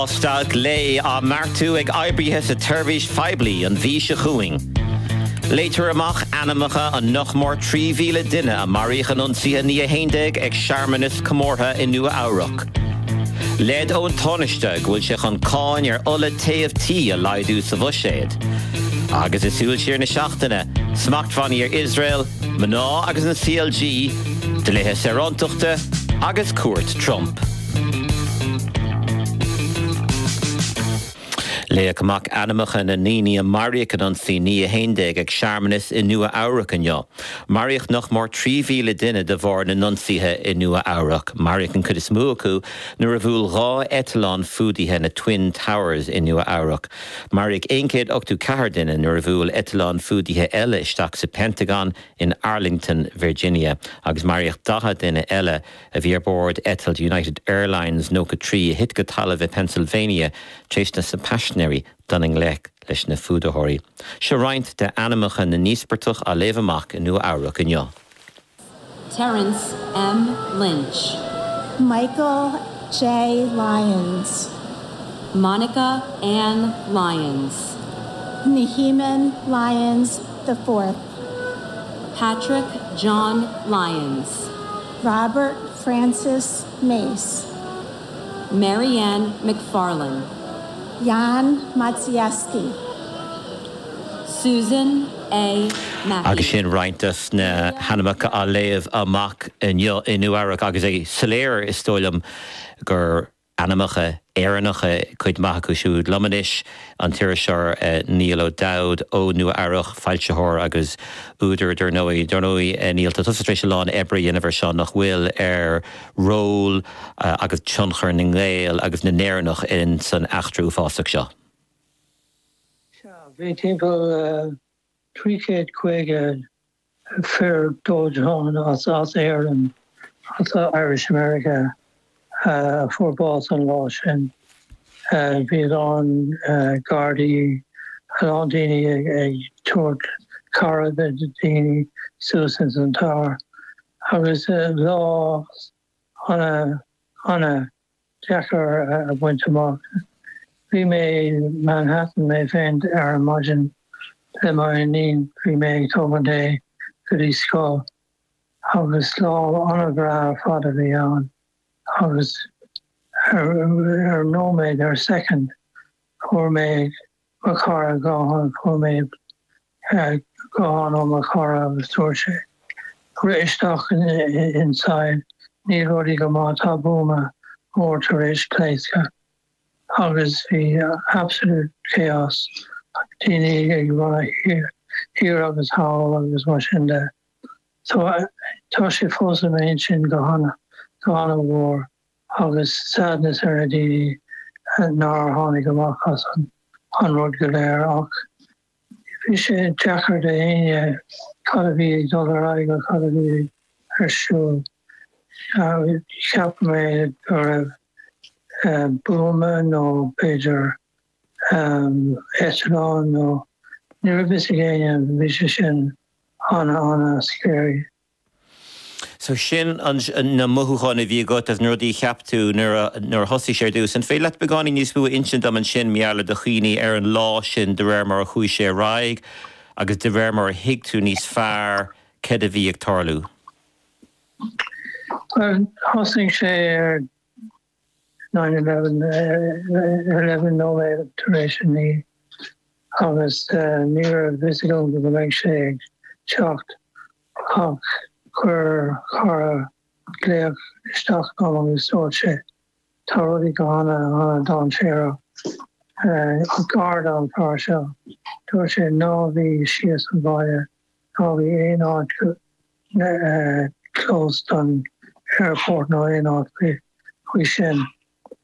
Dhá stad lae á mbeartú ag oibrithe sa tseirbhís phoiblí an mhí seo chugainn. Léitear amach ainmneacha an nach mór 3,000 duine a maraíodh in ionsaithe 9/11 ag searmanas comórtha i Nua-Eabhrac. Leid ón Tánaiste go bhfuil sé chun cáin ar ola téimh tí a laghdú sa bhuiséad. Agus sa súil siar na seachtaine, smachtbhannaí ar Iosrael, mná agus an CLG, dlíthe saorántachta agus cuairt Trump. Léadh amach ainmneacha na ndaoine a maraíodh in ionsaí 9 11 ag searmanas i Nua Eabhrac inniu. Maraíodh nach mór 3,000 duine de bharr na n-ionsaithe i Nua Eabhrac. Maraíodh an cuid is mó acu nuair a bhuail dhá eitleán fuadaithe na Twin Towers i Nua Eabhrac. Maraíodh aon chéad ochtú ceathair duine nuair a bhuail eitleán fuadaithe eile isteach sa Pentagon in Arlington, Virginia agus maraíodh daichead duine eile. a bhí ar bord eitilt United Airlines 93 a thit go talamh i bPennsylvania tar éis do na paisinéirí dul i ngleic leis na fuadaitheoirí. Seo roinnt de ainmneacha na n-íospartach á léamh amach i Nua Eabhrac inniu. Terrence M. Lynch. Michael J. Lyons. Monica Ann Lyons. Nehamon Lyons the Fourth. Patrick John Lyons. Robert Francis Mace. Marianne MacFarlane. Jan Maciejewski. Susan A. Mackay. Agus sin roinnt dos na hainmneacha á léamh amach inniu, agus é soiléir, is dóigh liom, gur. ainmneacha Éireannacha, cuid maith acu siúd liom anois, an t-iriseoir Niall O'Dowd ó Nua Eabhrac, foilsitheoir agus údar dar ndóigh. Dar ndóigh Niall tá tusa tar éis a lán oibre a dhéanamh ar seo nach bhfuil? ar ról agus tionchar na nGael agus na nÉireannach in san eachtra uafásach seo. Sea, bhí timpeall trí chéad caoga fear dóiteáin as Éirinn, as Irish America, a fuair bás an lá sin. Bhí a lán Gardaí, a lán daoine ag tabhairt cabhair do daoine suas ins an Tower agus lá ana, ana deacair a bhaint amach. Bhí mé Manhattan mé féin ar an maidin le m'iníon. Bhí mé ag tógaint í go dtí scoil agus lá ana-bhreá ar fad a bhí ann agus ar nóiméad ar soicind fuair mé mo chara dhá thon. Fuair mé guthán ó mo chara agus dúirt sé, rith isteach inside, níl rudaí go maith, tá buama mór tar éis pléascadh. Agus bhí absolute chaos, daoine ag run thiar agus thall agus mar sin de. So tá sé fós i m'intinn go hana, go hana mhór agus sadness ar na daoine nár tháinig amach as an rud go léir ach, Bhí sé deacair d'éinne cad a bhí ag dul ar aghaidh nó cad a bhí ar siúl. Cheap mé go raibh buama nó b'fhéidir eitleán nó ní raibh fhios ag éinne. Bhí sé sin ana ana scary. So sin na mothúcháin a bhí agat is na rudaí a cheap tú nuair a nuair a thosaigh sé ar dtús. An féidir leat beagáinín níos mó a insint dom ansin mar gheall ar do chuimhní ar an lá sin de réir mar a chuaigh sé ar aghaidh agus de réir mar a thuig tú níos fearr cad a bhí ag tarlú? Bhuel, thosaigh sé ar nine eleven eleven nóiméad tar éis a naoi agus ní raibh fhios agam go mbeadh sé ag teacht ach chuir cara glaoch isteach dom agus dúirt sé tá rudaí go hana hana dainséarach ag ardán fear seo. Dúirt sé ná bhí síos an bhaile Ná bhí aon áit close don airport nó aon áit faoi sin.